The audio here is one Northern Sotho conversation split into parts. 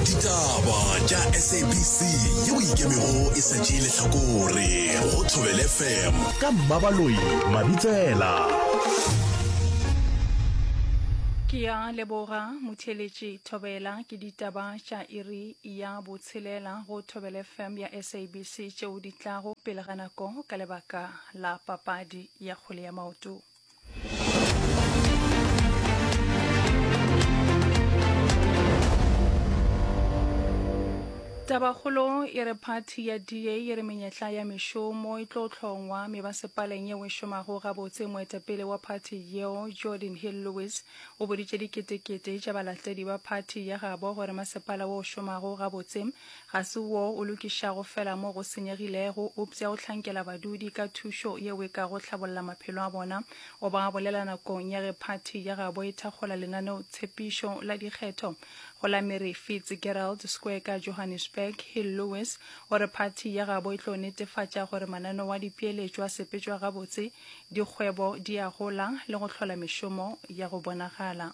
ditaba tša sabc yeo ikemego e sa tšee lehlakore go thobele fm ka mmabaloi mabitsela ke ya leboga motheletši thobela ke ditaba tša iri ya botshelela go thobele fm ya sabc tšeo di tlago pele ga nako ka lebaka la papadi ya kgwele ya maoto Tabakgolo e re phathi ya DA e re menyetla ya mešomo e tlo hlongwa me ba sepaleng yeo e šomago gabotse moetapele wa phathi yeo Jordan Hill Lewis o boditše diketekete tša balatedi ba phathi ya gabo gore masepala wo o šomago gabotse Ga se wo o lokišago feela mo go senyegilego, eupša o hlankela badudi ka thušo yeo e kago hlabolla maphelo a bona. O ba bolela nakong ya ge phathi ya gabo e thakgola lenaneotshepišo la dikgetho go la Mary Fitzgerald Square ka Johannesburg. Hill Lewis o re phathi ya gabo e tlo netefatša gore mananeo a dipeeletšo a sepetšwa gabotse, dikgwebo di a gola le go hlola mešomo ya go bonagala.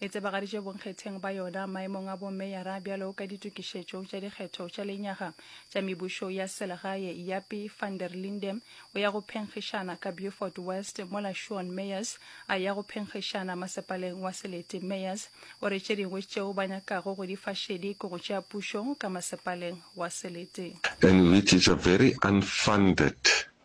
e tsebagaditše bonkgetheng ba yona maemong a bomeyara bjalo ka ditokišetšo tša dikgetho tša lenyaga tša mebušo ya selegae. Yapi van der Linde o ya go phenkgišana ka Beaufort West mola Shawn Meyers a ya go phenkgišana masepaleng wa Selete. Meyers o re tše dingwe tšeo ba nyakago go di fa šedi ke go tšea pušo ka masepaleng wa Selete. Enrique Javari unfunded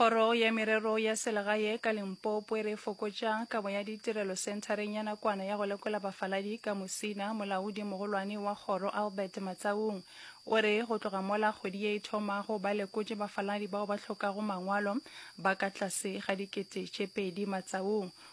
kgoro ya merero ya selegae ka limpopo e re fokotša kabo ya ditirelo senthareng ya nakwana ya go lekola bafaladi ka mosina molaodi mogolwane wa kgoro albert matsaung o re go tloga mola kgwedi ye e thomago ba lekotše bafaladi bao ba hlokago mangwalo ba ka tlase ga dikete tše pedi matsaung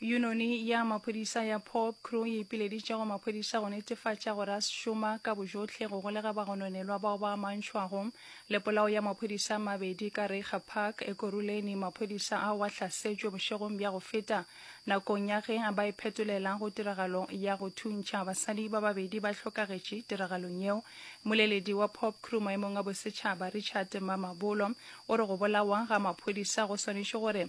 Yunoni ya maphodisa ya Pop Crew e ipileditše go maphodisa go netefatša gore a šoma ka bojotlhe go golega bagononelwa bao ba amantšhwago le polao ya maphodisa a mabedi ka Reiger Park, Ekurhuleni. Maphodisa ao a hlasetšwe bošegong bja go feta nakong ya ge ba iphetolela go tiragalo ya go thuntšha. Basadi ba babedi ba hlokagetše tiragalong yeo. Moleledi wa Pop Crew maemong a bosetšhaba, Richard Mamabolo, o re go bolawa ga maphodisa go swanetše gore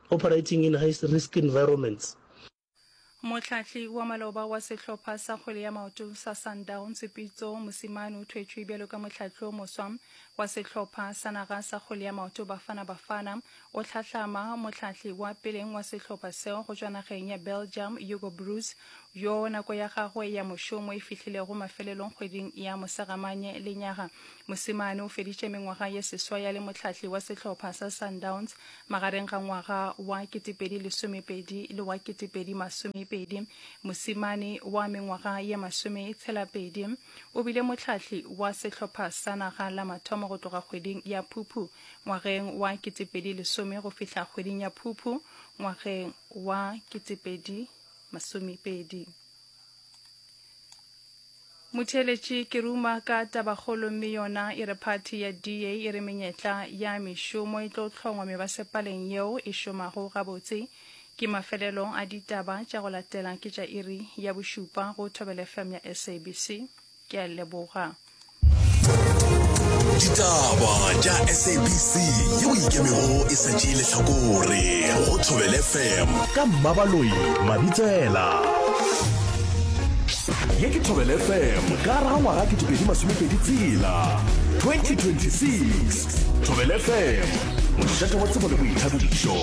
Operating in high risk environments. Mohlahli wa maloba wa sehlopha sa kgwele ya maoto sa Sundowns, Pitso Mosimane o thwetšwe bjalo ka mohlahli o moswa wa sehlopha sa naga sa kgwele ya maoto Bafana Bafana. O hlahlama mohlahli wa peleng wa sehlopha seo go tšwa nageng ya Belgium, Hugo Broos, yo nako ya gagwe ya mošomo e fihlilego mafelelong kgweding ya Mosegamanye lenyaga. Mosimane o feditše mengwaga ye seswai a le mohlahli wa sehlopha sa Sundowns Magareng ga ngwaga wa 2012 le wa 2020, mosimane wa mengwaga ye masome tshelapedi o bile mohlahli wa sehlopha sa naga la mathomo go tloga kgweding ya Phuphu ngwageng wa 2010 go fihla kgweding ya Phuphu ngwageng wa 2020. Motheeletši ke ruma ka tabakgolo mme yona e re phathi ya DA e re menyetla ya mešomo e tlo hlongwa mebasepaleng yeo e šomago gabotse. Ke mafelelo a ditaba tša go latela ke tša iri ya bošupa go Thobela FM ya SABC. Ke a leboga. Ditaba tša SABC yeo e ikemego e sa tšee lehlakore go Thobela FM. Ka Mmabaloi Mabitsela. Ye ke Thobele FM ka gare ga ngwaga ke dipedi masomepedi tsela 2026 Thobele FM mošate wa tsebo le boithabišo.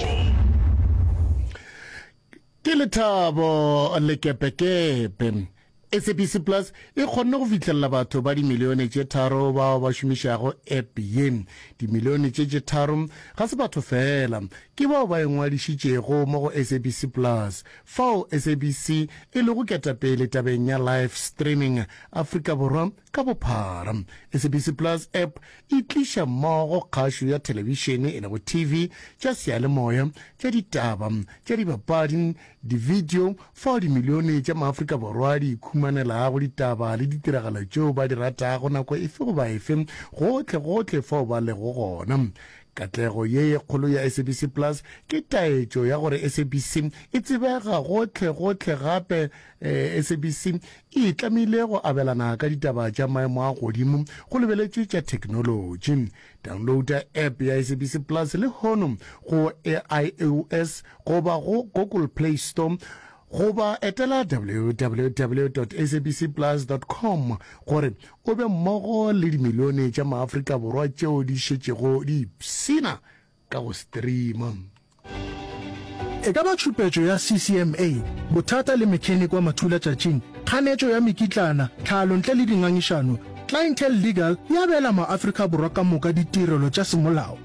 ke lethabo lekepekepe sabc plus e kgonne go fitlhelela batho ba dimilione tše tharo bao ba šomišago app ye dimilione tše tše tharo ga se batho fela ke bao ba engwadišitšego mo go sabc plus Fao SABC e lego ketapele tabeng ya live streaming Afrika Borwa ka bophara, SABC Plus App e tliša mmogo kgašo ya thelebišene, e lego TV, tša seyalemoya, tša ditaba, tša dibapadi, divideo, fao dimilione tša maAfrika Borwa di ikhumanelago ditaba le ditiragalo tšeo ba di ratago nako efe goba efe, gohlegohle fao ba lego gona. Katlego ye ye kgolo ya SABC Plus ke taetšo ya gore SABC e tsebega gohle gohle gape eh, SABC e itlamile go abelana ka ditaba tša maemo a godimo go lebeletšwe tša theknolotši. Downloada app ya SABC Plus le hono go AIOS goba go Google Play Store Goba etela www.sabcplus.com gore o be mmogo le dimilione tša maAfrika Borwa tšeo di šetšego di ipshina ka go streama. E ka ba tšhupetšo ya CCMA, bothata le mechanic wa mathulatšatšing, kganetšo ya mekitlana, tlhalo ntle le dingangišano, Clientele Legal e abela maAfrika Borwa ka moka ditirelo tša semolao.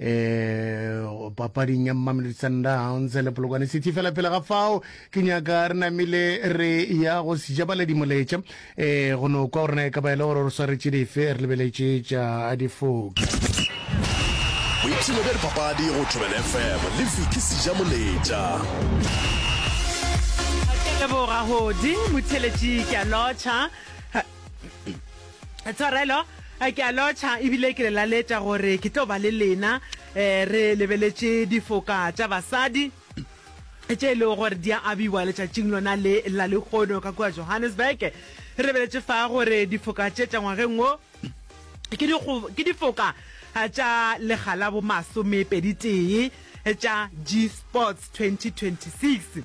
um papading ya mmamelodi sundowns le polokwane city fela pele ga fao ke nyaka re namile re ya go sejabaledi moletša um eh, go no kwa gorena e ka ba e le gore re swaretše dife re lebeletše tša difoki boipshelo bja dipapadi go thobela fm le fiki seja moletša leboga godi motheletši ke a lotšha Tshwarelo, ke a lotšha ebile ke le laletša gore ke tlo ba le lena um re lebeletše difoka tša basadi tše e lego gore di a abiwa letšatšing lona le la lekgono ka kua Johannesburg. Re lebeletše fa gore difoka tše tša ngwageng wo ke difoka tša lega la bomasomepeditee tša G-Sports 2026.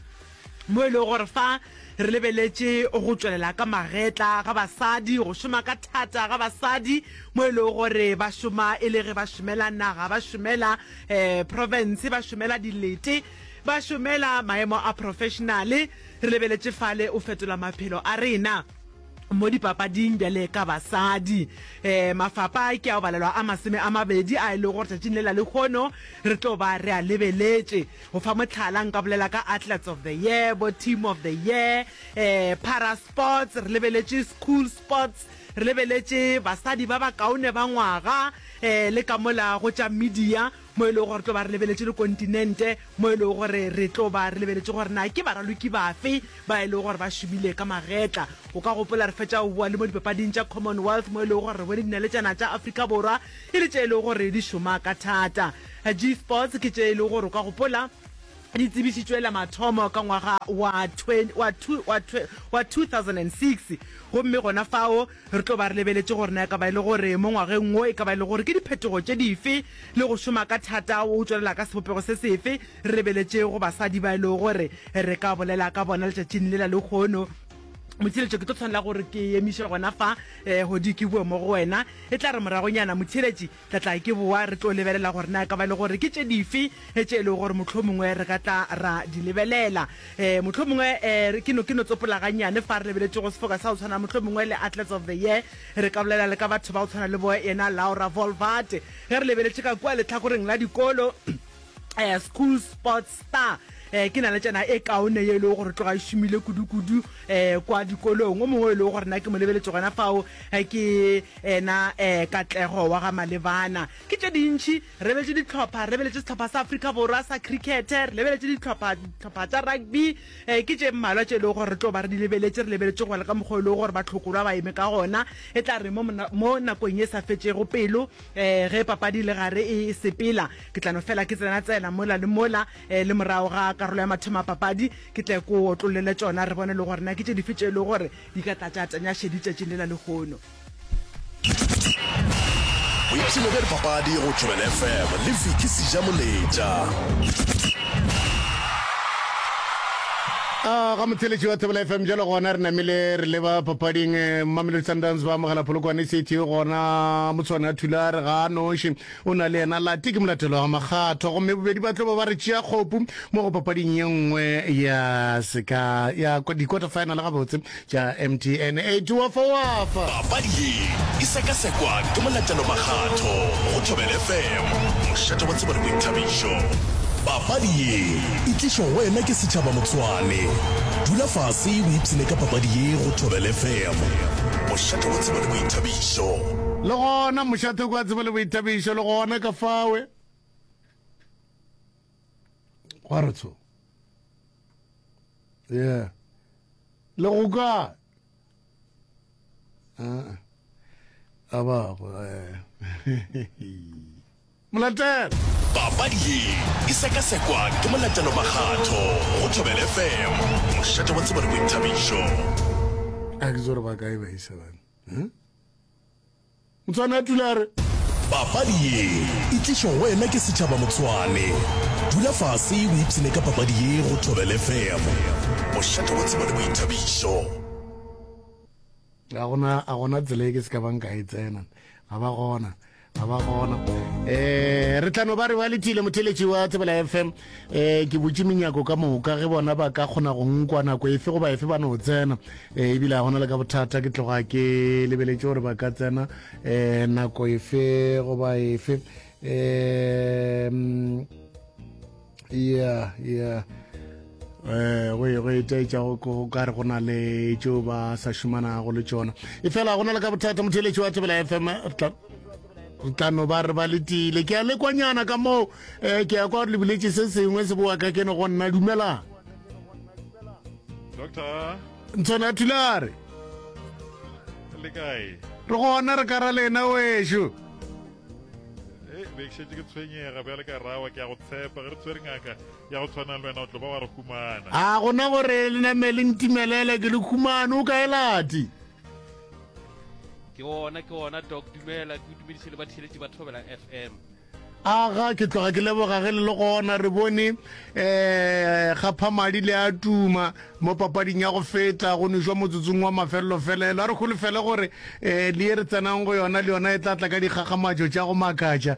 mo e lego gore fa re lebeletše go tšwelela ka magetla ga basadi, go šoma ka thata ga basadi mo e lego gore ba šoma e le ge ba šomela naga, ba šomela um profense, ba šomela dilete, ba šomela maemo a profešenale, re lebeletše fale o fetola maphelo a rena. mo dipapading bjale ka basadi. Um mafapa ke ao balelwa a masome a mabedi a e lego gore tšatšing le la lekgono re tlo ba re a lebeletše. Go fa motlhala nka bolela ka Athletes of the Year, bo Team of the Year, um Para Sports, re lebeletše School Sports, re lebeletše basadi ba bakaone ba ngwaga, um le ka mola go tša media. mo e lego gore re tlo ba re lebeletše dikontinente, mo e lego gore re tlo ba re lebeletše gore na ke baraloki bafe ba e lego gore ba šomile ka magetla. O ka gopola re fetša go boa le mo dipapading tša Commonwealth mo e lego gore re bone dinaletšana tša Afrika Borwa e le tše e lego gore di šoma ka thata. G-Sports ke tše e lego gore o ka gopola di tsebišitšwe la mathomo ka ngwaga wa 2006 gomme gona fao Re tlo ba re lebeletše gore na e ka ba e le gore mo ngwageng wo e ka ba e le gore ke diphetogo tše dife le go šoma ka thata o tšwelela ka sebopego se sefe. Re lebeletše go basadi ba e lego gore re ka bolela ka bona letšatšing lela lehono. Motheeletšo, ke tlo tshwanela gore ke emiše gona fa, Hodi, ke boe mo go wena. E tla re moragonyana, Motheeletši, Re tla ke boa re tlo lebelela gore na e ka ba e le gore ke tše dife tše e lego gore mohlomongwe re ka tla ra di lebelela. Um mohlomongwe um ke no ke no tsopola gannyane fa re lebeletše go sefoka sa go tshwana mohlomongwe le Athletes of the Year, re ka bolela le ka batho ba go tshwana le bo yena Laura Volvaart. Ge re lebeletše ka kua lehlakoreng la dikolo, eh, school sports star eh, ke na le tsena e kaone ye e lego gore tloga e šomile kudu-kudu eh, kwa dikolong o mongwe e lego gore na ke mo lebeletse gona fao eh, ke ena eh, katlego wa ga malebana ke tše dintšhi re lebeletse ditlhopha re lebeletse setlhopha sa africa borwa sa crickete re lebeletse ditlhopha ditlhopha tsa rugby eh, ke tše mmalwa tše e lego gore re tlo ba re di lebeletse re lebeletse go ya le ka mokgwa e lego gore batlhokorwa ba eme ka gona e tla re mo mona- mo nakong e sa fetšego pelo Ee, ge papadi le gare e sepela, ke tla no fela ke tsena-tsena mola le mola, ee, le morago ga karolo ya mathomo a papadi, ke tle ke o otlollele tšona, re bone le gore na ke tše dife tše e lego gore di ka tla tša tanya šedi tšatšing lela lehono. Boipshino bja dipapadi go Joel FM le Vicky Sija-Moletša. A ga motheletši wa Thobela FM jalo gona re namile re leba papading Mamelodi Sundowns ba amogela Polokwane City gona motshwane a thula re ga a noši o na le yena lati ke molatelo wa makgatho gomme bobedi ba tlo ba ba re tšea kgopu mo go papading ye nngwe ya seka ya dikota final gabotse Tša MTN 8 wa fa wa fa. Papadi ye e sekasekwa ke molatelo makgatho go Thobela FM, mošate wa tsebo le boithabišo. Papadi ye e tlišwa go wena ke Setšhaba Motsoane. Dula fase o ipshine ka papadi ye go Thobela FM, mošate wa tsebo le boithabišo. Le gona mošate kwa tsebo le boithabišo le gona ka fawe. gwa re tsho yeah le go ka ah, a ba go eh. molatelo papadi ye e sekasekwa ke molatelo makgatho go thobel fm mošate wa tsebone boithabišo a ke tsore ba kae ba isebane hmm? Motswana a tula a re. Papadi ye e tlišwa go wena ke Setšhaba Motswane. Dula fase o ipshine ka papadi ye go Thobela FM. Mošate wa tsebo le boithabišo. ga gona a gona tsela e ke se ka bang ka e tsena ga ba gona ga ba gona um re tlano ba re wa letile motheletši wa tsebela fm um ke botse menyako ka moka ge bona ba ka kgona go nkwa nako efe goba efe ba no tsena um ebile ga gona le ka bothata ke tloga ke lebeletše gore ba ka tsena um nako efe goba efe um ya ya um go e, go etaetša go ka re go na le tšeo ba sa šomanago le tšona e fela gona le ka bothata motheletši wa tebela fm tla no ba re ba letile ke a lekwanyana ka moo um ke ya kwa lebiletse se sengwe se bowa ka ke ne go nna dumelang doctor ntshone a thulare le kae re gona re kara lena wešo eh, bekšetse ke tshwenyega bjale ka rawa ke ya go tshepa ge re tshwere ngaka ya go tshwana le wena o tlo ba wa re humana a gona gore le namele ntimelele ke le humane o kae lati ke ona ke ona doc dumela ke dumediše le batheletši ba thobela fm aga ke tloga ke leboga ge le le gona re bone um gaphamadi le a tuma mo papading ya go feta go nešwa motsotsong wa mafelelo felelo a re golofele gore um le ye re tsenang go yona le yona e tla tla ka dikgakgamatšo tša go makatša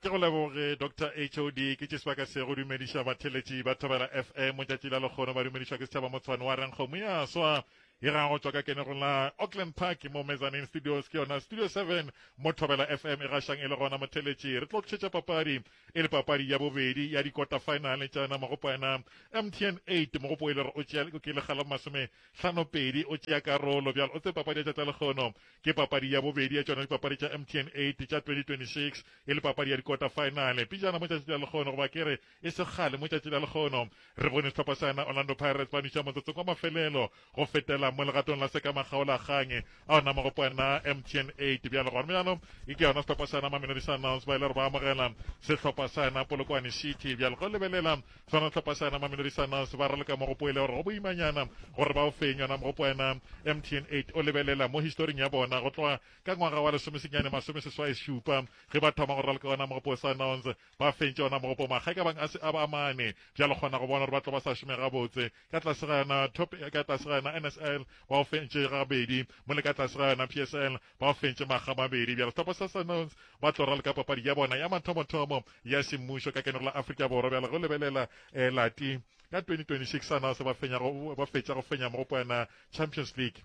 ke go leboge dr hod ke tše sebaka se go dumediša batheletši ba thobela fm tšatši la lekgono ba dumedišwa ke setšhaba motshwane wa renkgomo ya swa e ra go tšwa ka kenego la auckland park mo mezanin studios ke yona studio 7 mo thobela fm e gašang e le gona motheletši re tlo tšhetša papadi e le papadi ya bobedi ya dikota finale tšana mogopo ena mtn 8 mogopo e le gore o tšea ke lekga la masome tlhano pedi o tšea karolo bjalo o tse papadi ya tšatla lekgono Ke papadi ya bobedi ya tšona dipapadi tša MTN 8 tša 2026 e le papadi ya dikota-faenale. Pejana mo tšatši la lekgono, goba ke re e se kgale mo tšatši la lekgono, re bone sehlopha sana Orlando Pirates ba nwiša motsotsong wa mafelelo go fetela mo legatong la sekamakgaolakgang a ona magopo ana a MTN 8. Bjalo gona bjalo e ke yona sehlopha sana Mamelodi Sundowns ba ile gore ba amogela sehlopha sana Polokwane City. Bjalo go lebelela Swana tlhopasana maminorisana se ba raloka mogopo e le gore go boimanyana gore ba o feng yona mogopo wena mtn 8 o lebelela mo historing ya bona go tloga ka ngwaga wa lesomesenyane masome seswai šupa ge ba thoma go raloka yona mogopo sa nons ba fentše yona mogopo makga ka bang a se a ba amane bjalo kgona go bona gore ba tlo ba sa šome gabotse ka tlase ga yona top ka tlase ga yona nsl ba o fentše gabedi mo le ka tlase ga yona psl Ba fentše makga a mabedi bjalo Topo sa Sanons ba tlo raloka papadi ya bona ya mathomothomo ya semmušo ka kenero la Afrika Borwa bjalo go lebelela eh, lati ka 2026 Sanons ba, fenyago, ba fetša go fenya mogopo yana Champions League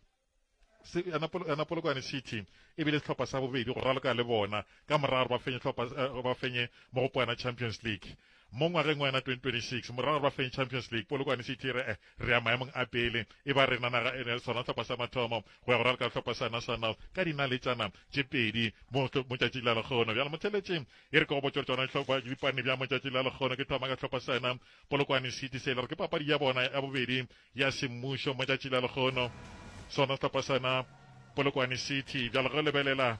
yana polokwane city e bile sehlopha sa bobedi go raloka le bona ka morago ba fenye eh, ba fenye mogopo yana champions league Mo ngwageng wa yona 2026, morago ga re ba feng Champions League, Polokwane City re eh, re ya maemong a pele. E ba rena naga e ne sona hlopha sa mathomo go ya go raloka le hlopha sa National ka dinaletšana tše pedi mo motšatšing la lekgono. Bjalo motheletši e re ke go botše gore tšona dihlopha dipane bja motšatšing la lekgono ke thoma ka hlopha sa yona Polokwane City se e le gore ke papadi ya bona ya bobedi ya semmušo motšatšing la lekgono. Sona sehlopha sa yona Polokwane City bjalo ge o lebelela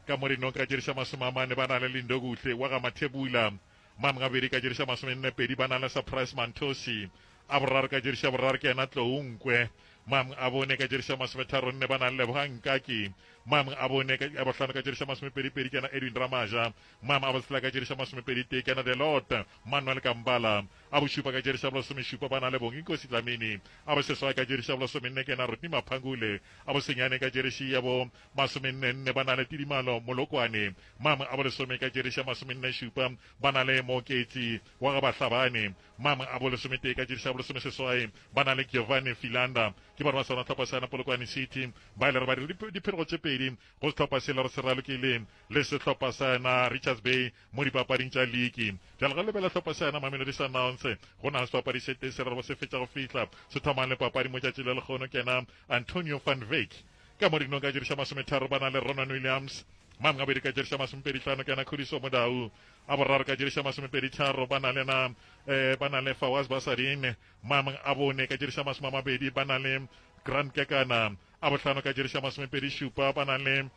ka mo dinong ka tše di sa masome a mane ba na le Lindokuhle wa ga Mathebula Mane gabedi ka diriša masomennepedi ba na le Surprise Mantosi. A boraro ka diriša boraro ke yena Tlou Nkwe. Mane a bone ka diriša masometharonne ba na le Lebogang Nkaki. Mane a bone ka a bohlano ka diriša masomepedipedi ke yena Edwin Ramaja. Mane a botshela ka diriša masomepeditee ke yena Delot Manuel Kambala. A bošupa ka diriša bolesomešupa ba na le Bonginkosi Dlamini. A boseswai ka diriša bolesomenne ke yena Rodney Maphangule. A bosenyane ka diriši ya bo masomennenne ba na le Tidimalo Molokwane, mama abo lesome ka tšeriša masomennešupa ba na le Mooketsi wa ga Bahlabane, mama abo lesometee ka tšeriša bolesomeseswai ba na le Giovanni Filanda. Ke barwa sona tlhopha sa na Polokwane City ba ile ra ba dira dipherego tše pedi go sehlopha se lero se ralokile le sehlopha sa na Richards Bay mo dipapading tša liki. Bjale re lebela hlopha sa na Mamelodi Sundowns go na sebapadi se tee se rero ba se fetša go fihla se thomang le papadi mo tšatši le lekgono ke na Antonio van Veek. Ka mo dinong ka diriša masometharo ba na le Ronwen Williams, Mam Ngabedi ka diriša masomepedi tlhano kena Khudiso Modau, a boraro ka diriša masomepedi tharo ba na le na eh, ba na le Fawaz Basadin, Mam a bone ka diriša masome a mabedi ba na le Grant Kekana, a bohlano ka diriša masomepedi šupa ba na le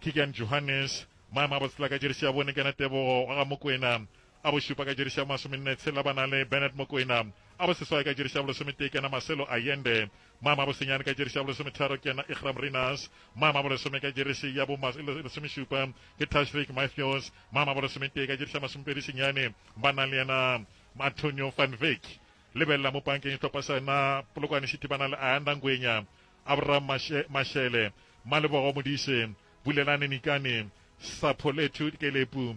Keegan Johannes, Mam a botsela ka diriša bone kena Tebogo wa ga Mokwena, a bo šupa ka diriša bo masomenne tshela ba na le Bernard Mokoena, a bo seswai ka diriša bo lesometee ke yena Marcelo Allende, mama a bo senyane ka diriša bo lesometharo ke yena Iqraam Rinus, mama a bo lesome ka diriši ya bo lesomešupa ke Tashreeq Mathews, mama a bo lesometee ka diriša masomepedi senyane ba na le yena Antonio van Wyk. Lebelela mo pankeng sehlopha sa yena Polokwane City ba na le Ayanda Ngwenya, Abraham Mashele, Malebogo Modise, Bulelani Nikane, Sapholethu Kelepu,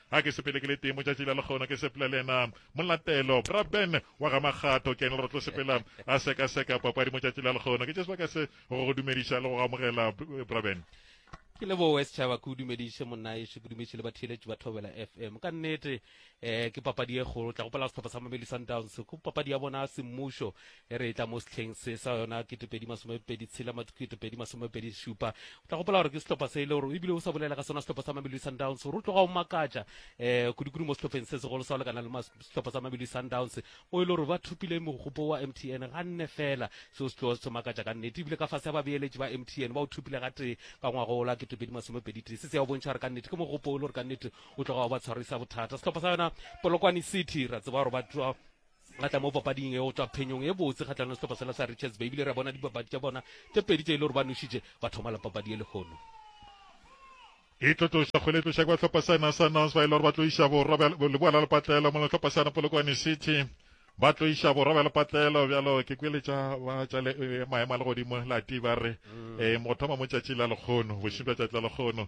Ga ke sepele ke le tee motšatši la lekgono ke sepela le yena molatelo. Bra Ben wa ga Makgatho ke yena re tlo sepela a sekaseka papadi motšatši la lekgono. Ke tše sebaka se go go dumediša le go go amogela Bra Ben. ke leboe setšhaba ke o dumediše monnaešo ke dumediše le batheeletši ba thobela fm ka nnete um ke papadi e kgolo tla gopela sehlopha sa mameli sundowns ke papadi ya bona semmušo E re e tla mo sehleng se sa yona ketepedi masomepedi tshela ketepedi masomepedi šupa o tla gopola gore ke sehlopha se e le gore ebile o sa bolela ka sona sehlopha sa mamelodi sundowns gore o tloga o makatša um kudikudu mo sehlopheng se segolo sa go lekana le sehlopha sa mamelodi sundowns mo e le gore ba thopile mogopo wa m t n ga nne fela seo se tloga se makatša ka nnete ebile ka fase ya babeeletši ba m t n ba o thopile ga tee ka ngwago ola ketepedi masomepedi tee se se ya o bontšha gore ka nnete ke mogopo o le gore ka nnete o tloga o ba tshwarisa bothata sehlopha sa yona polokwane city ra tseba gore ba Ra tla mo papading e go tšwa phenyong e botse kgahlano le sehlopha sela sa Richards Bay ebile ra bona dipapadi tša bona tše pedi tše e le gore ba nošitše ba thoma la papadi ye lehono. E tlo tloša kgwele e tloša kwa hlopha sa ena sa Nons ba e le gore ba tlo iša borwa leboa la lepatlelo mo le hlopha sa na Polokwane City ba tlo iša borwa bja lepatlelo bjalo ke kweletša ba tša maemo a legodimo la ti ba re um go thoma mo tšatši la lekgono bošing bja tšatši la lekgono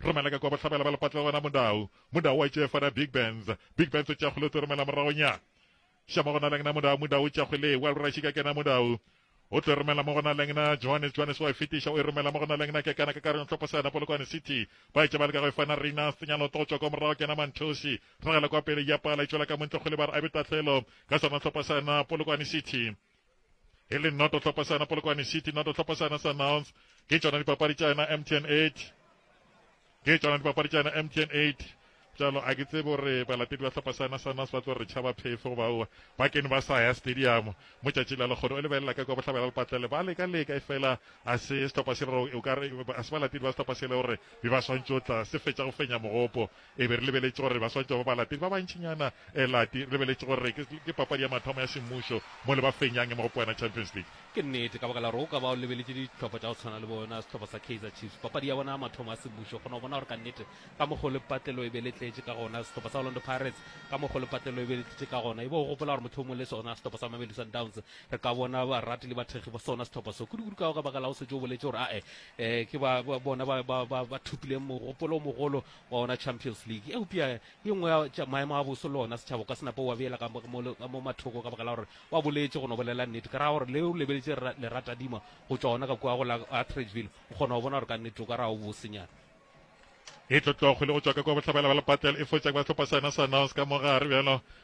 Romela ka kwa bohlabela ba lepatlela gona Mundau. Mundau wa tšefa na Big Benz. Big Benz o tšakgole o tse romela morago nya. Shama gona leng na Mundau, Mundau o tšakgole, wa lura šika kena Mundau. O tlo romela mo gona leng na Johannes, Johannes wa fetiša o e romela mo gona leng na kekana ka kareng tlhopo sana Polokwane City. Ba e tšebale ka go e fana Rina, Senyalo tlo tšwa kwa morago kena Manthosi. Ragela kwa pele ya pala e tšwela ka montle kgole ba re a be tatlhelo ka sana tlhopo sana Polokwane City. e le noto tlhopasana polokwane city noto tlhopasana sunhounds ke tšona dipapadi tša yena mtn 8 ke tšona dipapadi tša yena mtn 8 jalo a ke tsebe gore balatedi ba tlhopasana sunhounds ba tlo re tšhaba phefo goba oa ba kene ba sa ya stadium mo tšatši la lekgono o lebelela ka kwa bohlabela lepatlele ba leka leka e fela a se setlhopha se rero o kare a se balatedi ba setlhopha se le gore be ba swantšotla se fetša go fenya mogopo E be re lebeletše gore baswantšwa ba balatedi ba bantšinyana lati. Re lebeletše gore ke, ke papadi ya mathomo ya semmušo mo le ba fenyang e mo go poena Champions League. Ke nnete, ka baka la gore o ka ba o lebeletše dihlopha tša go tshwana le bona sehlopha sa Kaizer Chiefs, papadi ya bona ya mathomo ya semmušo, o kgona go bona gore ka nnete ka mokgo le patlelo e be le tletše ka gona, sehlopha sa Orlando Pirates ka mokgo le patlelo e be le tletše ka gona. E be o gopola gore mohlomongwe le sona sehlopha sa Mamelodi Sundowns re ka bona barati le bathekgi ba sona sehlopha so, kudu-kudu ka, ka baka la o šetše o boletše gore ae, eh, ke ba, ba bona ba, ba, ba, ba thopileng mogopolo o mogolo wa ona Champions League eupša ke nngwe ya tša maemo a boso le ona setšhaba o ka se nape wa beela ka mo- mo ka mo mathoko ka baka la gore wa boletše go no bolela nnete ka ra gore le o lebeletše ra- leratadima go tšwa ona ka kua go la Atteridgeville o kgona go bona gore ka nnete o ka ra o bosenyana e tlotlokgwele go tšwa ka kwa bohlabela ba lepatlelo e fotša kwa sehlopha sa yona sa nouns ka mogare bjalo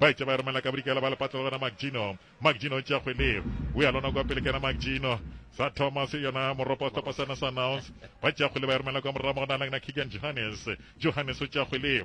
Ba etša ba romela ka bodikela ba lepatla le wena Magino. Magino o tšea kgwele. O ya lona kwa pele kena Magino. Sa Thomas yona moropa o topa sana sa Nouns. Ba tšea kgwele ba e romela kwa morra mo go na lengna Keegan Johannes. Johannes o tšea kgwele.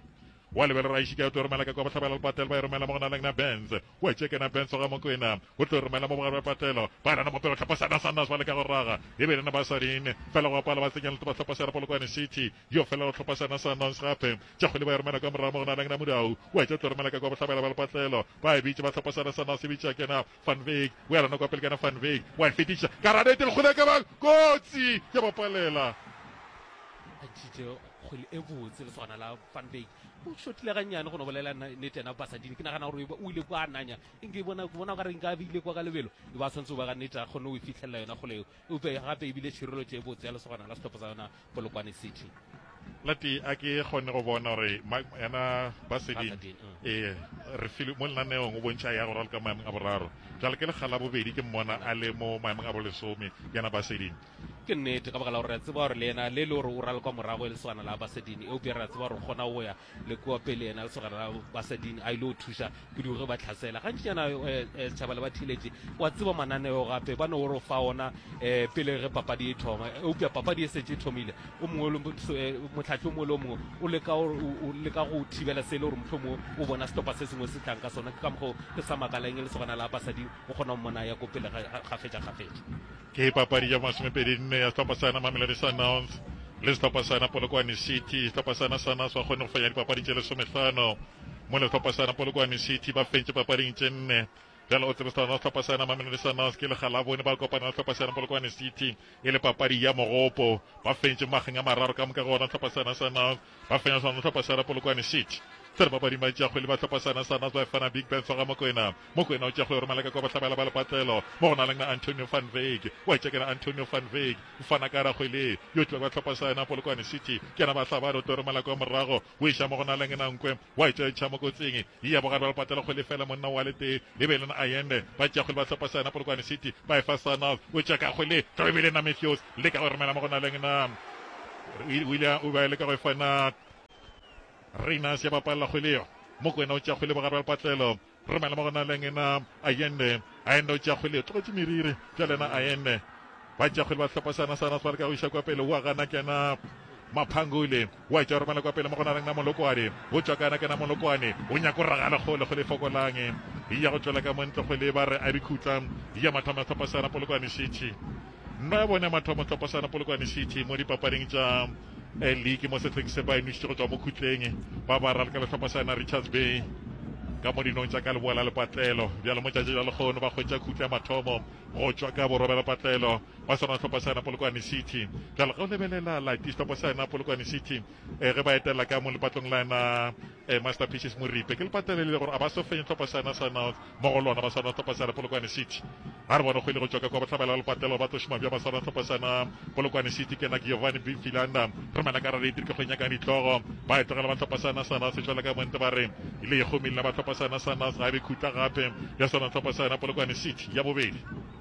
Wa lebelela a šika o tlo romela ka kwa bohlabela lepatela ba e romela mo go na lengna Benz. O etše kena Benz o ga Mokwena. O tlo romela mo bogare ba patlelo. Ba lana mopelo tlhapa sana sa Nouns ba leka go raga. E be lena ba sa rin. Fela go apala ba tsenya le topa tlhapa sa Polokwane City. Yo fela o tlhopa sena sa nonce gape. Tša kgwele ba e romela kwa morago mo go na leng na Mudau. O etša o tlo romela ka kwa bohlabela ba lepatlelo. Ba e bitše ba tlhopa sena sa nonce e bitša kena Van Wyk. O ya lona kwa pele kena Van Wyk. Wa e fetiša ka hara nete lekgwele ka ba kotsi ya ba palela. A tšitše kgwele e botse lesogana la Van Wyk. O šotile gannyane go no bolela nete yena Basadini. Ke nagana gore o ile kwa nanya. Eng ke bona ke bona o ka re nka be ile kwa ka lebelo. E ba swanetse o ba ga nete a kgone go e fihlelela yona kgwele eo. Eupša gape e bile tšhireletšo e botse ya lesogana la sehlopha sa yona Polokwane City. Lati a ke kgone go bona gore yena ba seding ee re file mo lenaneong o bontšha ya go raloka maemong a boraro jale ke lekga la bobedi ke mmona a le mo maemong a bolesome yena ba seding ke nnete ka baka la gore re a tseba gore le yena le le gore o raloka morago e le swana la ba seding eupša re a tseba gore kgona go ya le kua pele yena se gara basading a ile go thuša kudu ge ba tlhasela gantši yana eh, eh, setšhaba le ba thiletše wa tseba mananeo gape ba ne o re fa ona um pele ge papadi e thoma eupša papadi e setse e thomile o mongwe motlhatlhi o mongwe le o mongwe o leka go thibela se e le gore motlho mongwe o bona setopa se sengwe se tlang ka sona ke ka mokgwa ke sa makaleng e le segona la basading o kgona go mona ya ko pele gafetša gafetša Ke papadi ya masomepedi nne ya sehlopha sa yona Mamelodi Sundowns le sehlopha sa yona Polokwane City. Sehlopha sa yona sa yona sa kgone go fenya dipapadi tše lesomehlano mo le sehlopha sa yona Polokwane City ba fentše papading tše nne. Bjale o tsebe sa yona sehlopha sa yona Mamelodi Sundowns ke legalabone ba kopana le sehlopha sa yona Polokwane City e le papadi ya mogopo. Ba fentše mageng a mararo ka moka go ona sehlopha sa yona Sundowns. ba fenya swana le hlopha sa Era Polokwane City. Tsere bapadim ba tšeagwe le ba hlopha sa Nasar Nas ba efana Big Ben Soga Mokwena. Mokwena o tšeagwe Ormaleka kwa Bohlabela ba Lepatlelo mo go na leng na Antonio van Veek. O a itšakela Antonio van Veek. O fana ka Ragwe le yo tloe ba hlopha sa yena Polokwane City. Ke yena Bahlabadi o tore Maleka wa morago. O iša mo go na leng na Nkwe. O a itšwa e tšha mo kotsing. E ya bogare ba Lepatlelo kgwele fela monna o wa letee. E be e le na Ayende. Ba tšeagwe le ba hlopha sa yena Polokwane City. Ba efa sa Nas. O tšea ka kgwele. Tloe e be e le na Mefeos. Leka go romela mo go na leng na. o ile o ba leka go e fana Reiners ya bapalla kgwele yo mokwena o tša kgwele bogare ba lepatlelo romela mo gona leng ena ayende ayende o tša kgwele yo tlogetše meriri bjale ena ayende ba tša kgwele ba tlhopa sana sana ba leka go iša kwa pele wa gana kena maphangole wa tša romela kwa pele mo gona leng na molokwane o tšwa kana kena molokwane o nyako ragale kgole kgole fokolang e ya go tšwela ka montle kgwele ba re a dikhutla ya mathomo ya tlhopa sana polokwane šetše Ba bone mathomo tlhophosano Polokwane City mo dipapading tša liki mo sehleng se ba e nwešitše go tšwa mo khutleng ba ba ralka le tlhophosana Richards Bay ka mo dinong tša ka leboa la lepatlelo. Bjalo mo tšatši la lekgono ba hwetša khutle ya mathomo go tšwa ka boroba la lepatlelo ba swana tlhophosana Polokwane City. Bjalo ge o lebelela Lati's tlhophosana Polokwane City ge ba etelela ka mo lepatlong la yena A Masterpieces Moripe ke lepatela le ile gore a ba sofenye tlhopha sa yona sa North mo go lona ba swana tlhopha sa yona Polokwane City a re bona kgwele go tšwa ka kwa bohlabela ba lepatela ba tlo šoma bja ba swana tlhopha sa yona Polokwane City ke na Giovanni Bifilanda re mana ka radiator ke kgwe nyakang ditlogo ba e tlogela ba tlhopha sa yona sa North šola ka monte ba re ile e kgomile ba tlhopha sa yona sa North ga e be khutla gape ya swana tlhopha sa yona Polokwane City ya bobedi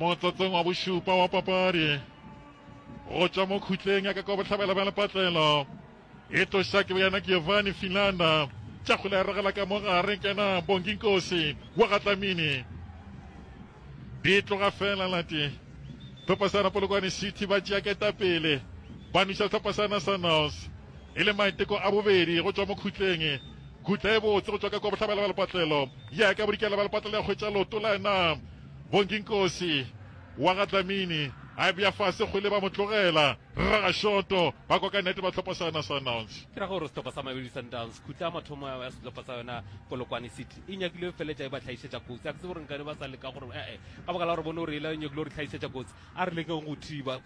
motsotsong wa bošupa wa papadi go tšwa mo khutleng ya ka kwa bohlabela bja lepatlelo e tloša ke boyana giovanni finlanda tša go leregela ka mo gare kena bonginkosi wa gatlamini Di tloga fela la tee, hlopha sa Polokwane City ba tšea ketapele, ba nwiša hlopha sa Nationals. E le maiteko a bobedi go tšwa mokhutleng. Khutla e botse go tšwa ka kwa bohlabela ba lepatlelo, ya ka bodikela ba lepatlelo ya hwetša loto la yena Bonginkosi wa ga Dlamini, a e bea fase kgole ba mo tlogela. Rragashoto ba koka nete ba hlopha sa Nationals. Ke ra gore sehlopha sa Mamelodi Sundowns khutla a mathomo ya sehlopha sa yona Polokwane City. e nyakile go feletša e ba tlhaišetša kotsi a ke tsebe gore nkane ba sa leka gore ee ka baka la gore bone gore ela e nyakile gore tlhaišetša kotsi a re lekeng go thiba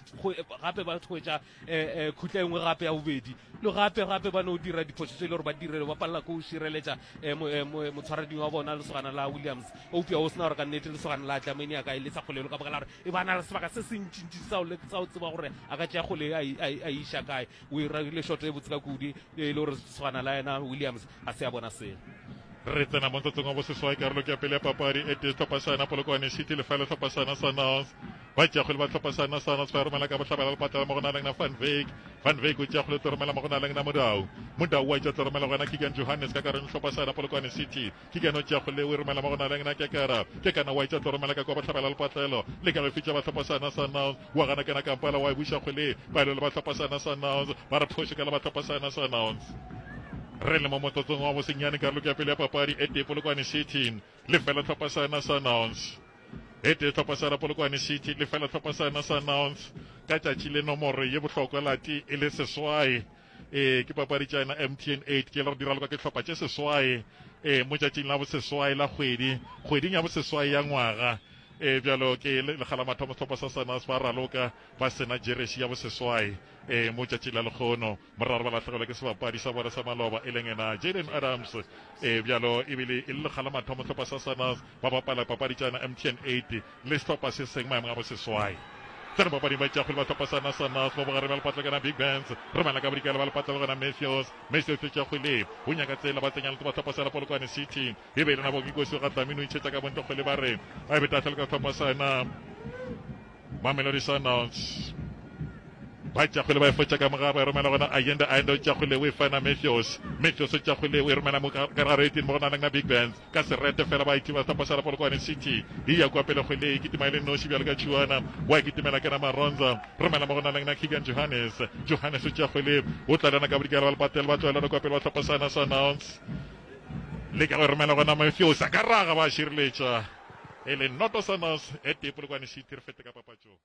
gape ba hwetša um khutla engwe gape ya bobedi le gape gape ba no dira diphoso tse e le gore ba direle ba palela ko o šireletša motshwarading wa bona lesogana la williams eupša o sena gore ka nnete lesogana la tlamene ya ka e le sa kgolelo ka baka la gore e ba na le sebaka se se ntšintši sa o tseba gore a ka tšea kgole a iša kae O e rarile shot e botse ka kudu e le gore tshwana la yena Williams a se a bona selo. Re tsena mo tsatsong wa boseswai karolo ke ya pele ya papadi e tee tlhopha sa yona Polokwane City le fela tlhopha sa yona Sundowns ba tšeakgwele ba tlhopha sa yona Sundowns ba e romela ka bohlabela le patlela mo go na leng na Van Veek Van Veek o tšeakgwele tlo romela mo go na leng na Modau Modau wa tša tlo romela go yena Keegan Johannes ka karone tlhopha sa yona Polokwane City Ke kena o tšeago le o e romela mo go na leng na ke kara ke kana wa itša tlo romela ka kwa bohlabela lepatlelo le ka lefi tša batlhopho sa na sa nouns wa gana kena kampala wa e buša go le palo le batlhopho sa na sa nouns ba re phoši ka le batlhopho sa na sa nouns re le mo motsotsong wa bosenyane karoloko ya pele ya papadi e tee polokwane city le fela tlhopha sa na sa nouns e tee tlhopha sa la polokwane city le fela tlhopha sa na sa nouns ka tšatši le nomoro ye bohlokwa lati e le seswai Ee, ke papadi tša yena MTN 8 ke lero diraloka ke hlopha tše seswae e mo tšatšing la boseswae la kgwedi kgweding ya boseswae ya ngwaga e bjalo ke lekgalamathomo sehlopha sa sanas ba raloka ba sena jeresi ya boseswae e mo tšatšing la lekgono moraro ba lahlegelwa ke sebapadi sa bona sa maloba e leng ena jaden adams e bjalo ebile e le lekgalamathomo sehlopha sa sanas ba bapala papadi tša yena mtn 8 le sehlopha se seng maemong a boseswai. Tseno papading ba tšea kgwele ba sehlopha sa Nasanas mo bogareng bja lepatla kana Big Bands. Re bana ka bodikela ba lepatla le gona Mathews. Mathews o tšea kgwele o nyaka tsela ba tsenya lete ba sehlopha sa la Polokwane City. E be e le nabo Kikosi o ga Dlamini o itšhetša ka bontle kgwele ba re a e beta fela ka sehlopha sa na Mamelodi Sundowns. Ba tšea kgwele ba e fotša ka mogare ba e romela gona Ayende. Ayende o tšea kgwele o e fana Mathews. Mathews o tšea kgwele o e romela mo ka gare etini mo go na le na Big Bands. Ka se rete fela ba Activa Stampa Shala Polokwane City e ya kua pele kgwele e kitima e le noši bjalo ka tšhuana wa e kitimela kena Maronza romela mo go na lengna Keegan Johannes Johannes o tšea kgwele o tlalana ka bodikela ba Lepatel ba tloelana kua pele ba hlopha sana Sanauns le ka go romela gona Mafiosa ka raga ba šireletša e le noto Sanauns e tee Polokwane City re fete ka papatšong.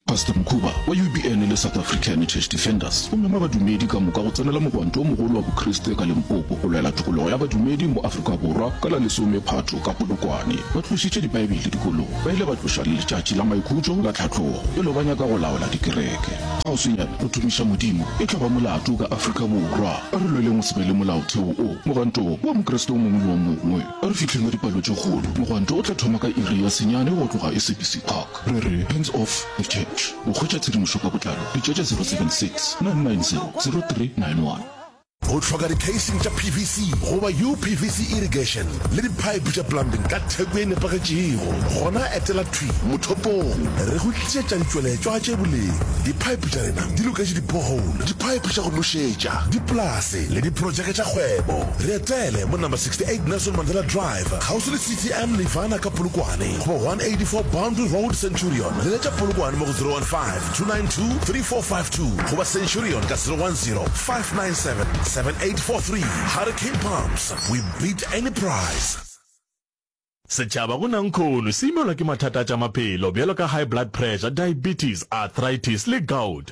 Pastor Mkhuba wa UBN le South Africa Heritage Defenders o mema badumedi ka moka go tsenela mogwanto o mogolo wa Bokriste ka Limpopo go lwela tokologo ya badumedi mo Afrika Borwa ka la lesome Phatho ka Polokwane. Ba tlošitše Dibaebele dikolong, ba ile ba tloša le letšatši la maikhutšo la tlhatlogo pele ba nyaka go laola dikereke. Kgauswinyana go tumiša Modimo e tlo ba molato ka Afrika Borwa. A re lweleng go se be le molaotheo wo mogwanto wo wa Mokriste o mongwe le o mongwe. A re fihleng ka dipalo tše kgolo, mogwanto o tla thoma ka iri ya senyane go tloga e Sebisi Park. Re re Hands Off The Church. Go hwetša tshedimošo ka botlalo letšatša 076-990-0391. O hloka dikheising tša PVC goba UPVC irrigation le diphaephe tša plumbing ka theko e nepagetšego? Gona etela thwi mothopong re go tlišetša ditšweletšwa tše boleng. Diphaephe tša rena di loketše di-borehole, diphaephe tša go nošetša, dipolase le diprotšeke tša kgwebo. Re etele mo Number 68 Nelson Mandela Drive, kgauswi le CTM Nirvana ka Polokwane. Go 184 Boundary Road, Centurion. Leletša Polokwane mo go 015-292-3452 goba Centurion ka 010-597-7843. Hurricane Pumps, we beat any price. Setšhaba go Nankhono se imelwa ke mathata a tša maphelo bjalo ka high blood pressure, diabetes, arthritis le gout.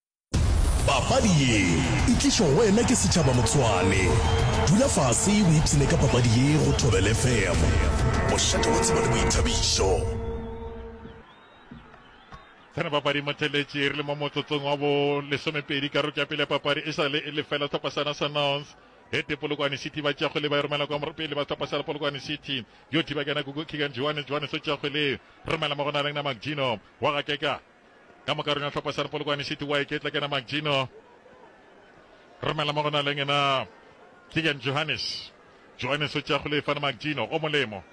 papadi ye e tlišwa go wena ke setšhaba motswane dula fase o ipshine ka papadi ye go thobel fm bošate wa tseba le boithabišo Tsena papadi motheletše re le mo motsotsong wa bo lesomepedi karolo ya pele ya papadi e sale e lefela tlhopha sana sanons hete polokwane city ba tšago le ba e romela kwa pele ba tlhopha sala polokwane city yo thiba kana kuku kigan johannes johannes o tšago le romela mo go na leng na macgino wa gakeka ka moka rona tlhopha sa re polokwane city wa iketla kena magino romela mo go na leng ena kegan johannes johannes o tšea go lefana magino o molemo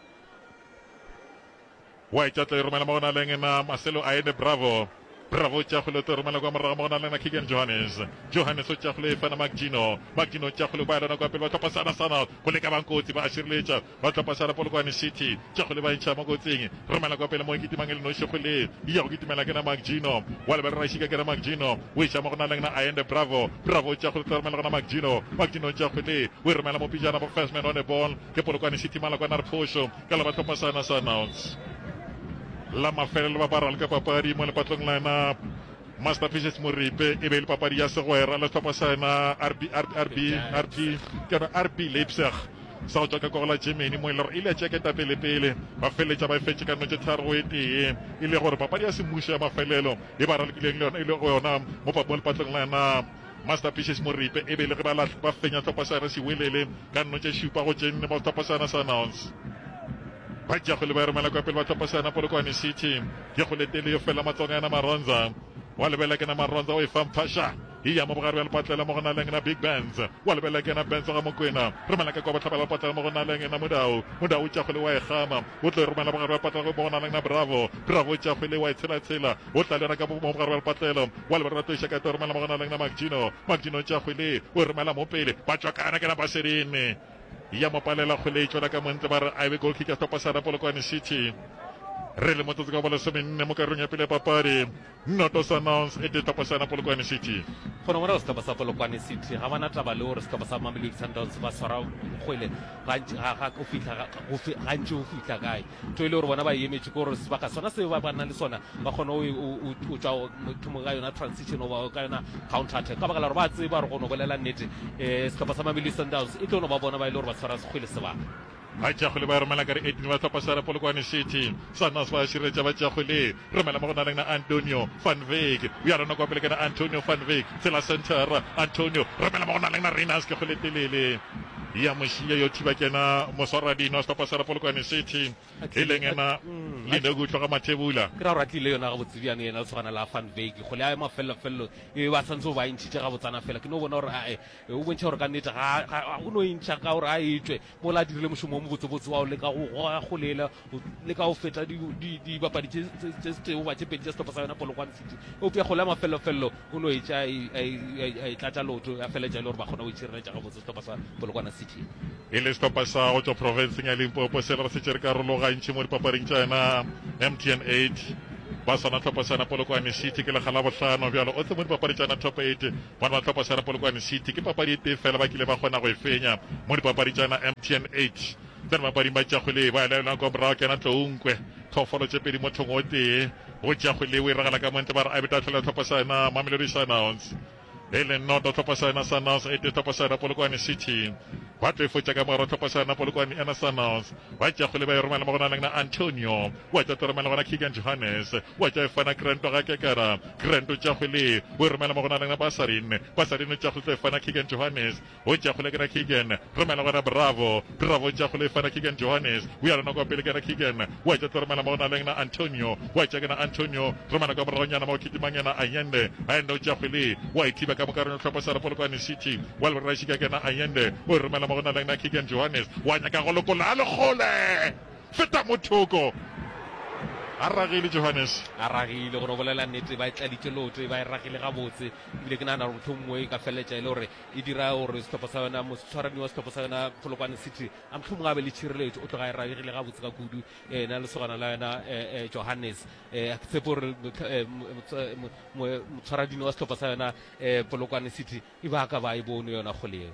wa iketla e romela mo go na leng ena marcelo a ene bravo bravo o tšea go leto romela kwa morago mo go na leng ena kegan johannes johannes o tšea go lefana magino magino o tšea go le kwa yalona kwa pele ba tlhopha sana sana go leka bangkotsi ba a šireletša Ba tla pasala Polokwane City, tšago le ba ntšha mo kotsing. Romela kwa pele mo e kitimang e le noši go le ya go kitimela ke na Makjino. Wa lebelela ra šika ke na Makjino. O iša mo go na leng na Ayende Bravo. Bravo o tšago le tla romela go na Makjino. Makjino o tšago le o e romela mo pijana bo first man on a ball ke Polokwane City mala kwa na re phošo ka la ba tlhopa sana sa announce la mafelelo ba ba ralka papadi mo lepatlong la na Master Pieces Moripe e be le papadi ya segwera le tlhopa sa na RB RB RB RB ke na RB Leipzig sa go tšwa ka kogo la Germany mo e lego e ile ya tšea ketapelepele ba feleletša ba e fetše ka notše tharo go e tee e le gore papadi ya semmušo ya mafelelo e ba ralokileng le yona e le go yona mo papong lepatlong la yona Masterpieces Moripe e be le ge ba lahle ba fenya tlhopha sa yona Sewelele ka notše šupa go tše nne ba tlhopha sa yona Sanons ba tšea kgole ba e romela kwa pele ba tlhopha sa yona Polokwane City ke kgoletele yo fela matsogong a yona Maronza wa lebela ke na Maronza o e fa mphasha Eya mo bogare bja lepatlela mo go na leng na Big Benz, wa lebelela ke yena Benz Gamokwena. Romela ka kwa bohlabela lepatlela mo go na leng na Modau, Modau o tšakgwele wa e kgama. O tlo e romela bogare bja lepatlela mo go na leng na Bravo, Bravo o tšakgwele wa e tshelatshela. O tla lera ka mo bogare bja lepatlela, wa lebala ba tlo iša ka tlo e romela mo go na leng na Makjino, Makjino o tšakgwele o e romela mo pele. Ba tswakana ke na ba serene. Eya mo palela kgole e tšwela ka mo ntle ba re a e be goal kick ya Stopasara Polokwane City. Re le motsotso ka wa bolesomenne mo karolong ya pele ya papadi. Noto Summons e tetopoša na Polokwane City. Go no bona sehlopha sa Polokwane City ga ba na taba le gore sehlopha sa Mamelodi Sundowns ba tshwara kgwele gantši go fihla kae. Ntho e le gore bona ba emetše ke gore sebaka sona se ba nang le sona ba kgone go tšwa thomong ka yona transition goba ka yona counter attack ka baka la gore ba tseba gore go no bolela nnete eh, sehlopha sa Mamelodi Sundowns e tlo no ba bona ba e le gore ba tshwara kgwele sebaka. Ba Jakgwele ba romela ka re eighteen ba hlopa share Polokwane City. Swanas ba širetša ba Jakgwele. Romela mo go na leng na Antonio van Wyk. Bja rona kwa pele ke na Antonio van Wyk. Tshela center. Antonio. Romela mo go na leng na Reiners Kekgwele telele. Ya mošia yo thiba ke na Moswara Dino a hlopa share Polokwane City. E leng ena Linoku tloga Mathebula. Ke ra gore a tlile yona gabotse bjano yena o tshwana la van Wyk. Kgwele ya mafelelo felelo e be ba santse o ba ntšhitše gabotsana fela. Ke no bona gore ae Be o bontšha gore ka nnete ga, ga, ga o no e ntšha ka gore a etšwe mola a dirile mošomo wo mobotsebotse wa go leka go goga go lela, go leka go feta dibapadi di, di, tše, tše setee goba tše pedi tša sehlopha sa yona Polokwane City. Eupša kgole ya mafellofello o no etša a, a, a, a e tlatša leoto ya feletša e le gore ba kgona go itšhireletša gabotse sehlopha sa Polokwane City. E le sehlopha sa go tšwa profenseng ya Limpopo se le re se tšere karolo gantši mo dipapading tša yona MTN 8, ba swana sehlopha sa yona Polokwane City ke lega Labohlano bjalo o tle mo dipapadi tša yona Top 8 Bona ba Tlhopho Sera Polokwane City ke papadi e tee fela ba kile ba kgona go e fenya mo dipapadi tša na MTN 8 tša dibapading ba Tšakgwele ba laelwa kwa morago ke na Tlounkwe phoofolo tše pedi mothong o tee go Tšakgwele o iragala ka montle ba re a beta tlhola Tlhopho sa na Mamelodi Sundowns e le noto Tlhopho sa na Sundowns e tee Tlhopho sa na Polokwane City ba tlo e fotša ka mogaro Tlhopho sa na Polokwane e na Sundowns ba Tšakgwele ba e romela mo go na leng na Antonio Wa tša teremela gona Keagan Johannes, wa tša efana Grant ga kekera, Grant o tša kgwele, o e romela mo go na lena Basarin, Basarin o tša kgwele tlo efana Keagan Johannes, o tša kgwele kena Keagan, romela gona Bravo, Bravo o tša kgwele efana Keagan Johannes, o ya lona kwa pele kena Keagan, wa tša teremela mo go na lena Antonio, wa tša kena Antonio, romela kwa moragonyana mo go kitimang yena Ayende, Ayende o tša kgwele, wa e thiba ka moka reno tlhopho sa re Polokwane City, wa lebora šika kena Ayende, o e romela mo go na lena Keagan Johannes, wa nyaka go lokola a le kgole! Feta mo thoko. A ragile Johannes. A ragile gore o bolela nnete ba e tladitše loto e ba e ragile gabotse ebile ke nagana gore mohlomongwe e ka feleletša e le gore e dira gore sehlopha sa yona motshwarani wa sehlopha sa yona polokwane city a mohlomongwe a be le tšhireletšo o tloga e ragile gabotse ka kudu ena le segona la yona johannes um ke tshepe gore motshwaradini wa sehlopha sa yona um polokwane city e ba ka ba e bone yona kgole eo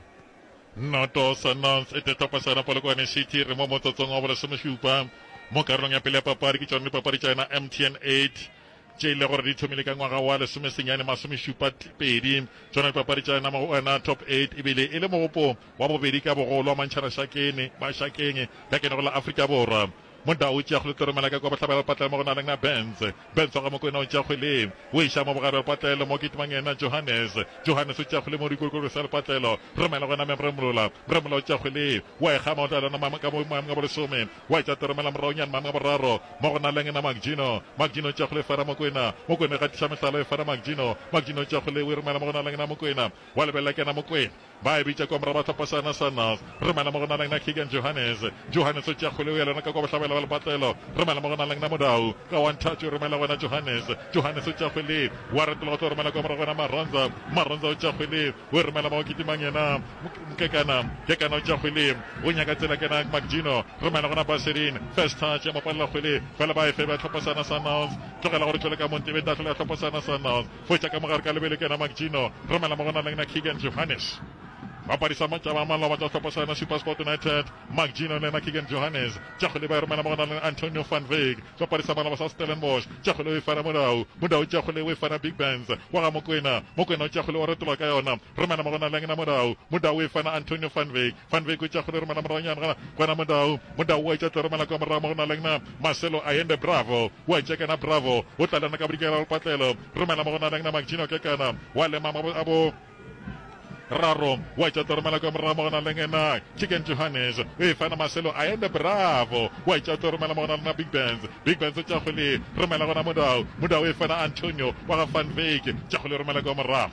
Noto Sundowns e tetopa sona Polokwane City re mo motsotsong wa bolesomešupa mo karolong ya pele ya papadi. Ke tšona dipapadi tša yona MTN 8 tše e le gore di thomile ka ngwaga wa lesomesenyane masomešupa pedi. Tšona dipapadi tša yona mo go yona top 8 ebile e le mogopo wa bobedi ka bogolo wa mantšhana Shakene ba Shakeng ka kene go la Afrika Borwa. Mda o tšea kgwleToro mela ka kua bohlabela lepatlelo mo go na leng na Benz. Benz wa ga Mokwena o tšea kgwle o e ša mo bogare lepatlelo mo kitimang yena Johannes. Johannes o tšea kgwle mo go dikolokolo sa lepatlelo re mela go yena Memremola. Mremola o tšea kgwle wa e kgama o tla lena mama ka mo mama ka bolesome wa e tša Toro mela morago nyane mama ka boraro mo go na leng na Makjino. Makjino o tšea kgwle e fara Mokwena. Mokwena o e gatiša mehlala e fara Makjino. Makjino o tšea kgwle o e romela mo go na leng na Mokwena. Wa lebelela ke yena Mokwena. Ba e bitša kwa morago ba hlopha seana sa North. Re mela mo go na leng na Keagan Johannes. Johannes o tšea kgoleo ya lona ka kwa bohlabela ba lepatlelo. Re mela mo go na leng na Modau. Ka wa nthatšo o romela go na Johannes. Johannes o tšea kgwele wa retela go tlo romela kwa morago go na Maronza. Maronza o tšea kgwele o e romela mo go kitimang yena Mkekana. Mkekana o tšea kgwele o nyaka tsela ke na Mcgino. Re mela go na Baserin. First touch ya mo palela kgwele fela ba e feba ya hlopha seana sa North. Tlogela gore tšwele ka mo Ntebeta a hlola ya hlopha seana sa North. Go etša ka mogare ka lebelo ke yena McGino, Romela Mogonaleng na Keagan Johannes. Bapadi sa mantša ba maloba tša sehlopha sa yona SuperSport United, McGino le yena Keagan Johannes. Tša go leba e romela Mogonaleng Antonio van Wyk. Bapadi sa maloba sa Stellenbosch, tša go leo e fana Modau. Modau tša go leo e fana Big Benz wa ga Mokwena. Mokwena o tša go leo o retologa ka yona, Romela Mogonaleng na Modau. Modau e fana Antonio van Wyk. Van Wyk o itša go le re mala moranyana gana gona Modau. Modau wa itša tlore mala kwa morago mo go na le nna Marcelo Ayende Bravo wa tšekana Bravo o tla le nna ka bodikela go patlelo re mala mo go na le nna Magino Kekana wa lema mo a bo raro wa itša tlore mala kwa morago mo go na le nna Chicken Johannes o e fana Marcelo Ayende Bravo wa itša tlore mala mo go na le nna Big Bands Big Bands o tša go le re mala gona Modau Modau e fana Antonio wa ga Van Wyk tša go le re mala kwa morago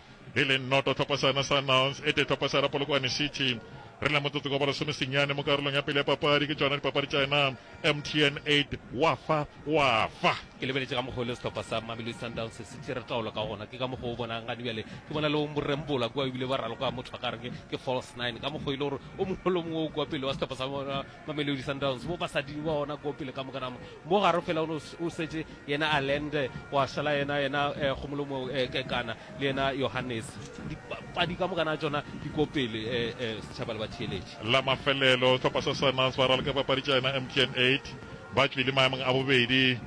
e le noto tlhopasana Sundowns e tee tlhopasana Polokwane City. Re le motsotso ka bolesome senyane mo karolong ya pele ya papadi ke tšona dipapadi tša ena MTN 8 wa fa wa fa. Ke lebeletše ka mokgwa o le sehlopha sa Mamelodi Sundowns se se tšere taolo ka gona, ke ka mokgwa o bonang gane bjale ke bona le borembola kua ebile ba raloka motho a ka re ke false nine ka mokgwa e le gore o mongwe le o mongwe o kua pele wa sehlopha sa bona Mamelodi Sundowns mo basading ba ona ko pele ka mokanamo mo garo fela o ne o setse yena Allende wa sala yena yena eh, gomolomo eh, kekana le yena Johannes dipadi ka mokana tsona di ko pele eh, eh, setšhaba le batheeletše la mafelelo hlopha sa Sundowns ba raloka papadi tša yena mtn 8 ba tšwile maemong a bobedi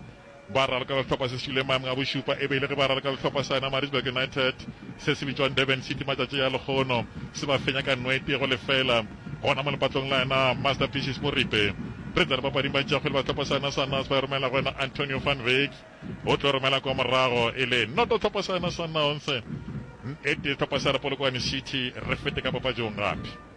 Ba raloka lehlopha se šwile maemong a bošupa e be e le ge ba raloka lehlopha sa yona Maritzburg United se se bitšwang Durban City matšatši a lekgono se ba fenya ka nwete go lefela gona mo lepatong la yona Masterpieces mo Ripe. Re tla dipapading baitšeakgwele ba sehlopha sa yona sa Naas ba e romela go yena Antonio van Wyk o tlo romela kwa morago e le noto hlopha sa yona sa Naons. N-ete sehlopha sa re Polokwane City re fete ka papatšong gape.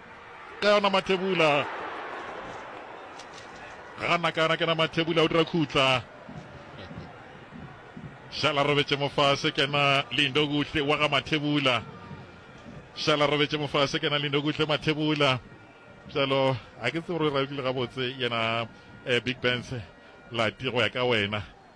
ka yona Mathebula gana ka yona kena Mathebula o dira khutla šala robetše mofase kena lindo kuhle wa ga Mathebula šala robetše mofase kena lindo kuhle Mathebula bjalo a ke tsebe gore ra utlwile gabotse yena eh, big bands lati go ya ka wena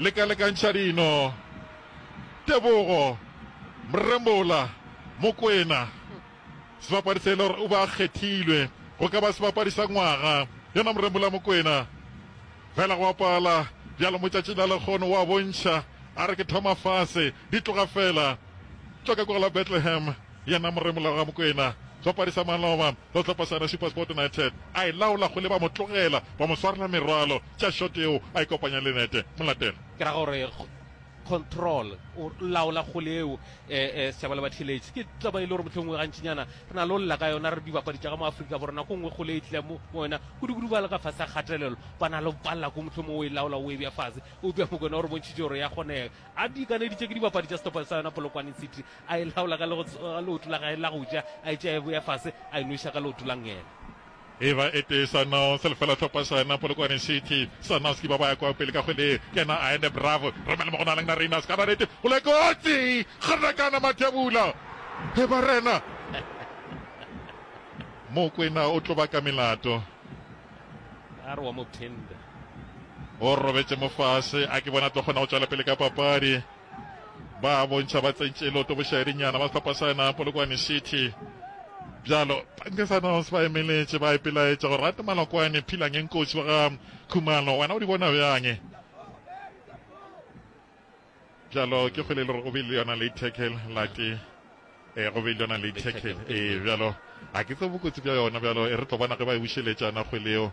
Lekalekantšha dino. Tebogo, Mrembola, Mokwena. Sebapadi se e le gore o be a kgethilwe go ka ba sebapadi sa ngwaga, yena Mrembola Mokwena. Fela go a pala, bjalo mo tšatšing la lekgono o a bontšha, a re ke thoma fase, di tloga fela. Tšwa ka kwa la Bethlehem. Yena moremolao ga Mokwena. Sopadi sa maloba sa sehlopha sa Recipasport United a e laola go le ba mo tlogela ba mo swarela merwalo tša short yeo a e kopanya le nete. Molatelo. Ke ra gore control o laola kgole yeo eh, eh, Sethaba le Batheletši. Ke taba e le gore mohlomongwe gantšinyana re na le go lla ka yona re dibapadi tša ga mo Afrika Borwa. Nako nngwe kgole e tla mo mo yona kudukudu ba le ka fase a kgatelelo ba na le go palela ko mohlomongwe o e laola o e bja fase. Eupša Mokwena o re bontšhitše gore ya kgonega. A di ikaneditše ke dibapadi tša setopano sa yona Polokwane City a e laola ka leoto la gae la go ja, a e tšea e boya fase, a e nweša ka leoto la ngele. E ba e tee Sanos, lefela tlhopha sona, Polokwane City, Sanos ke ba ba ya kwa pele ka kgwele, kena a ene Bravo, romela mo go nalang na Rayners, ka barete, go le kotsi, kganakana Mathebula, e ba rena, Mokwena o tloba ka melato, a re wa mo tender. o robetše mo fase, a ke bona tlo kgona go tšwela pele ka papadi. ba bontšha ba tsentše loto bošaedinyana ba sehlopha sa yona Polokwane City. Bjalo Pankesanos ba emeletše ba ipelaetša gore rate Malokwane Philangeng kotsi wa ga Khumalo wena o di bona bjang? Bjalo ke kgwele le gore o be le yona late tackle late e go be le yona late tackle ee bjalo ga ke tse bokotsi bja yona bjalo e re tlo bona ge ba e bušeletšana kgweleo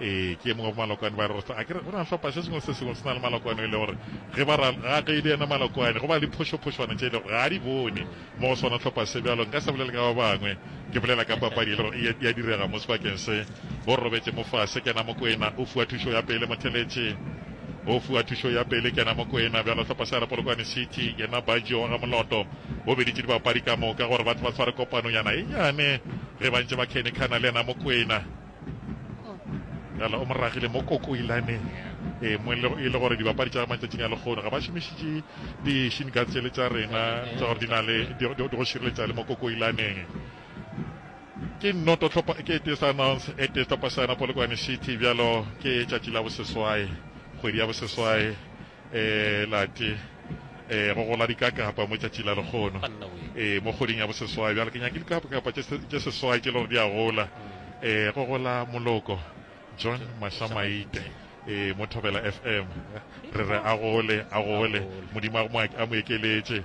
ee ke mongwe malokwane ba re a kere go na hlopha se sengwe se sengwe se na le malokwane e le gore ge ba ra ga ge le ena malokwane go ba le phošophošwane tše e le gore ga a di bone mo go sona hlopha se bjalo nka se bolele ka ba bangwe ke bolela ka papadi e le gore ya direga mo sebakeng se bo robetse mo fase kena mokwena o fiwa thušo ya pele motheletše o fiwa thušo ya pele kena mokwena bjalo hlopha se ara polokwane city yena bajo wa ga moloto o beditše dibapadi ka moka gore ba tle ba tshware kopanonyana e nyane ge ba ntse ba khenekhana le yena mokwena gala o moragile mo kokoilaneng e mo e le gore dibapadi tša matšatšing a lekgono ga ba šomišitše di-shin guard tsele tša rena tsa gore di na le di go šireletsa le mo kokoilaneng ke nnoto tlhopa ke ete sa announce ete tlhopa sa yona polokwane city bjalo ke tšatši la boseswae kgwedi ya boseswae e la te e go gola dikakapa mo tšatši la lekgono e mo kgoding ya boseswai bjale ke nyake dikakapa tše seswai tše le gore di a gola e go gola moloko john mahlamaite e mo thobela fm re re a gole a gole modimo a mo ekeletše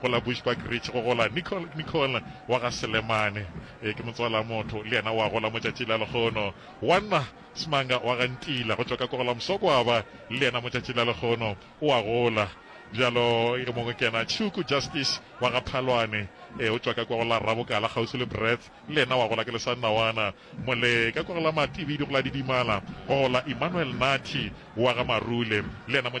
go la Bushbuck Ridge go gola Nicole, Nicole wa ga Selemane, ee, ke motswalamotho, le yena o a gola mo tšatši la lehono. Wanna Smanga wa ga Ntila go tšwa ka Kogola Msokwaba, le yena mo tšatši la lehono o a gola. Bjalo yo mongwe ke yena Tshuku Justice wa ga Phalwane, ee, o tšwa ka kwa go la Rabokala kgauswi le Breth, le yena o a gola ke le sa nna wana. Mole ka kwa go la Matibidi go la Didimala go gola Emmanuel Nathi wa ga Marule, le yena mo tšatši